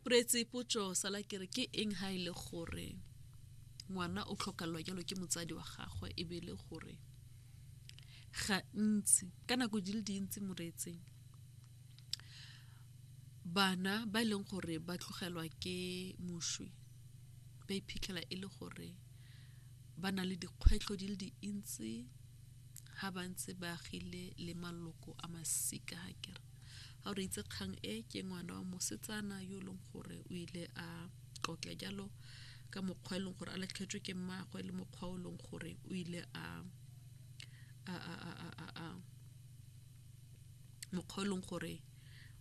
poretse potso sala kere ke eng ha ile e gore ngwana o tlhokalwa jalo ke motsadi wa gagwe e be e le gore gantsi ka nako di le dintsi moretseng bana ba e leng gore ba tlogelwa ke moswi ba iphitlhela e le gore ba na le dikgwetlho di le dintsi ha ba ntse ba agile le maloko a masika ga kere ga re itse kgang e ke ngwana wa mosetsana yo e leng gore o ile a tlotla jalo ka mokgwa e leng gore a latlhetswe ke mmaagwe le mokgwa o e leng gore o ile a mokgwa o e leng gore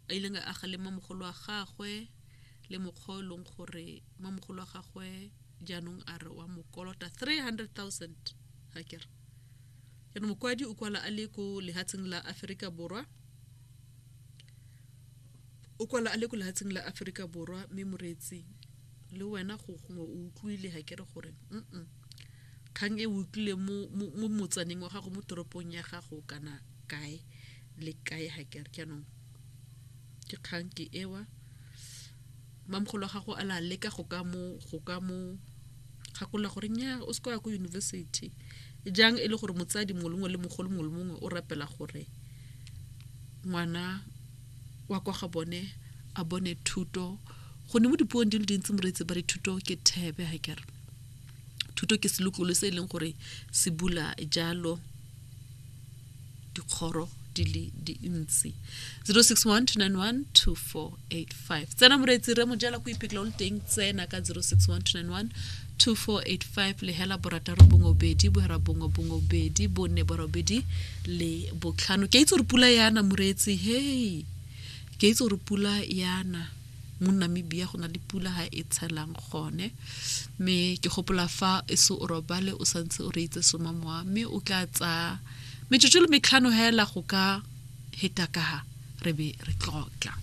a ileng a agale mamogolo wa gagwe le mokgwa o e leng gore mamogolo wa gagwe jaanong a re wa mokolota 300 000 ga kere jaanong mokwadi o kwala a le ko lehatsheng la aforika borwa o kwala a le ko lehatsheng la aforika borwa mme moreetsi le wena go gongwe o utlwile ga kere gore mm kgang e utlwile mo motsaneng wa gago mo toropong ya gago kana kae le kae ga kere jaanong ke kgang ke ewa mamgolo wa gago a la leka go ka mo go ka mo gakola gore nya o se kwa ko university jang e le gore motsadi mongwe le mongwe le mogolo mongwe le mongwe o rapela gore ngwana wa kwa ga bone a bone thuto go ne mo dipuong di le dintsi moreetsi ba re thuto ke thebe ga kere thuto ke selokolo se e leng gore se bula jalo dikgoro di le dintsi 0612912485 tsena moreetsi re mojela ko iphitlha o le teng tsena ka 0612912485 le hela borataro bongwe obedi bohera bongwe bongwe obedi bone borobedi le botlhano ke a itse gore pula yana moreetsi hei ke a itse gore pula yana mo Namibia go na le pula ha e tshelang gone mme ke gopola fa e se o robale o santse o reitse soma mowa mme o ka tsa metsotso le metlhano hela go ka heta ka re be re tlotla